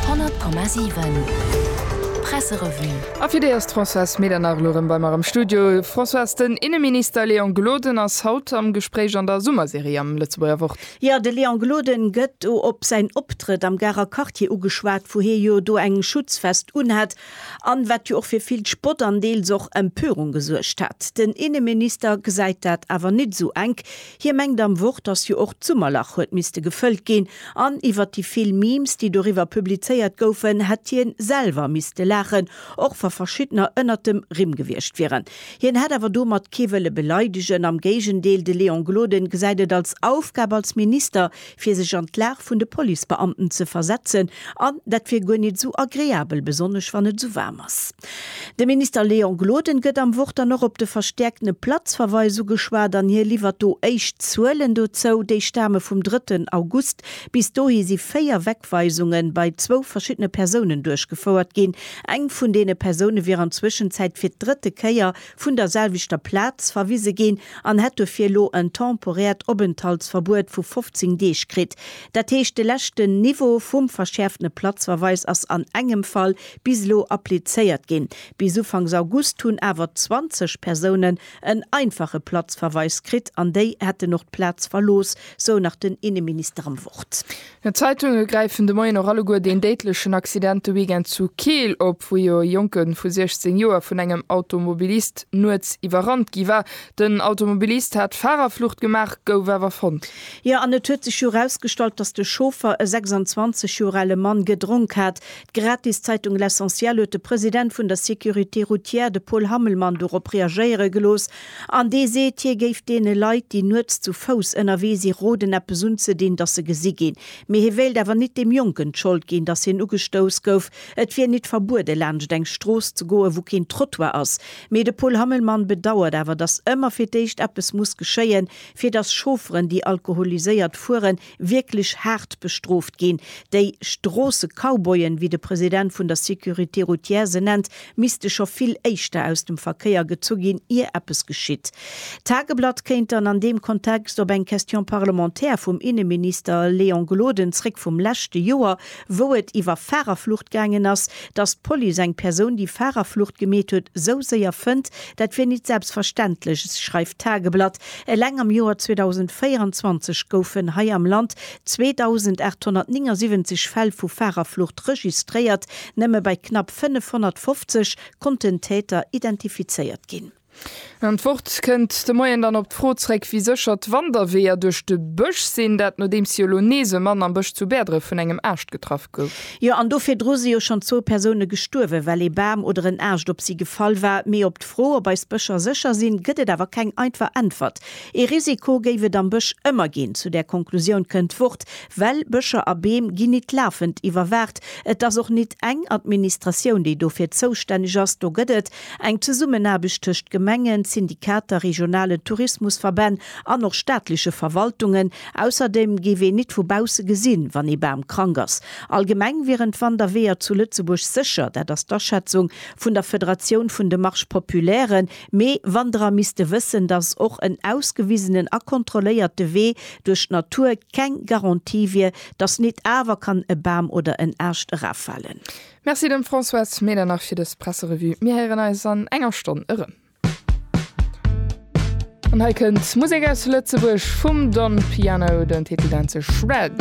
100,7 Presserevue A fir déi ass d'Françoise Medernach elo rëm bei mer am Studio. Françoise, den Inneminister Léon Gloden ass haut am Gespréich an der Summerserie am Lëtzebuerger Wort. Jo, de Léon Gloden gëtt do op säin Optrëtt am Garer Quartier ugeschwat, wou hie jo do eng Schutzvest unhat an wat jo och fir vill Spott an deels och Empörung gesuergt hat. Den Inneminister gesäit dat awer net esou enk. Hie mengt am Wort, dass jo och d'Summerlach huet misste gefëllt ginn, an iwwert déi vill Memes, déi doriwwer publizéiert goufen, hätt hien selwer misste laachen, och wa verschiddener ënnert dem Rimm gewiescht wieren. Hien hätt awer domat kee wëlle beleidegen, am Géigendeel, de Léon Gloden gesäit et als Aufgab als Minister, fir sech an d'Lag vun de Policebeamten ze versetzen, an dat wier guer nit esou agreabel, besonnesch wann et esou waarm ass. De Minister Léon Gloden gëtt am Wort dann och op de verstäerkten Platzverweis ugeschwat an hie liwwert do éischt Zuelen dozou. Déi stame vum drëtten August. Bis dohi si véier Wegweisunge bei zwou verschiddene Persounen duerchgefouert ginn. Eng vun deene Persoune wier an Zwëschenzäit fir d'drëtte Kéier vun der selwechter Plaz verwise ginn an hätt dofir elo en temporäert Openthaltsverbuet vu 15 Deeg kritt. Dat heescht, de leschten Niveau vum verschäerftene Platzverweis ass an engem Fall bis elo applizéiert ginn. Bis ufanks August hunn awer 20 Persounen en einfache Platzverweis kritt an déi hätten och d'Plaz verlooss, sou nach den Inneminister am Wort. D'Zeitunge gräifen de Moien och alleguer deen déidlechen Accident de Weekend zu Keel op, wou jo e Jonke vu 16 Joer vun engem Automobilist nuets iwwerrannt gi war. Den Automobilist hat Farerflucht gemaach, gouf awer fonnt. Jo, an et huet sech jo erausgestallt, datt de Chauffer, e 26 Joer ale Mann, gedronk hat. D'gratis Zeitung L'Essentiel huet de President vun der Sécurité routière, de Paul Hammelmann, dorop reagéiere gelooss An dee seet, hie géif deene Leit, déi nuets zu Fouss ënnerwee si roden, eppes unzedinn, datt se gesi ginn. Mee hie wéilt awer nit deem Jonken d'Schold ginn, datt hien ugestouss gouf. Et wier nit verbuede laanscht eng Strooss ze goen, wou keen Trottoir ass. Mee de Paul Hammelmann bedauert awer, datt ëmmer fir d'éischt eppes muss geschéien, fir datt Chaufferen, déi alkoholiséiert fueren, wierklech haart bestrooft ginn, déi Stroosse-Cowboyen, wéi de President vun der Sécurité routière se nennt, misste scho vill éischter aus dem Verkéier gezu ginn, ier eppes geschitt. D'Tageblatt kéint dann an deem Kontext op eng Question parlementaire vum Inneminister Léon Gloden zréck vum leschte Joer, wou et iwwer Fahrerflucht gaangen ass, dass d'Police eng Persoun, déi Fahrerflucht gemeet huet, esou séier fënnt, dat wier nit selbstverständlech, schreift d'Tageblatt. Eleng am Joer 2024 goufen hei am Land 2.879 Fäll vu Fahrerflucht registréiert. Nëmme bei knapp 550 konnten Täter identifizéiert ginn. An d'Wort kënnt de Moien dann op d'Fro zréck, wéi sécher d'Wanderweeër duerch de Bësch sinn. Dat nodeems si elo nees e Mann am Bësch zu Bäerdref vun engem Aascht getraff. gouf. Jo, an do virdru si jo schonn zwou Persoune gestuerwen, well ee Bam oder en Aascht op si gefall war. Mee op d'Fro, ob eis Bëscher sécher sinn, gëtt et awer keng einfach Äntwert. Ee Risiko géif et am Bësch ëmmer ginn. Zu där Konklusioun kënnt d'Wort, well Bëscher a Beem ginn nit lafend iwwerwaacht. Et ass och nit eng Administratioun, déi dofir zoustänneg ass. Do gëtt et eng Zesummenaarbecht tëscht Gemengen, Syndikater, regionalen Tourismusverbänn an och staatleche Verwaltungen. Ausserdem géif een nit vu bausse gesinn, wann ee Bam krank ass. Allgemeng wieren d'Wanderweeër zu Lëtzebuerg sécher, dat ass d'Aschätzung vun der Federatioun vun de Marches populaires. Mee Wanderer misste wëssen, datt och en ausgewisenen a kontrolléierte Wee duerch d'Natur keng Garantie wier, datt nit awer kann e Bam oder en Aascht eraffalen. Merci dem Françoise Medernach fir dës Presserevue. Mir héieren eis an enger Stonn erëm. An hei kënnt Musek aus Lëtzebuerg vum Don Piano, den Titel nennt sech Red.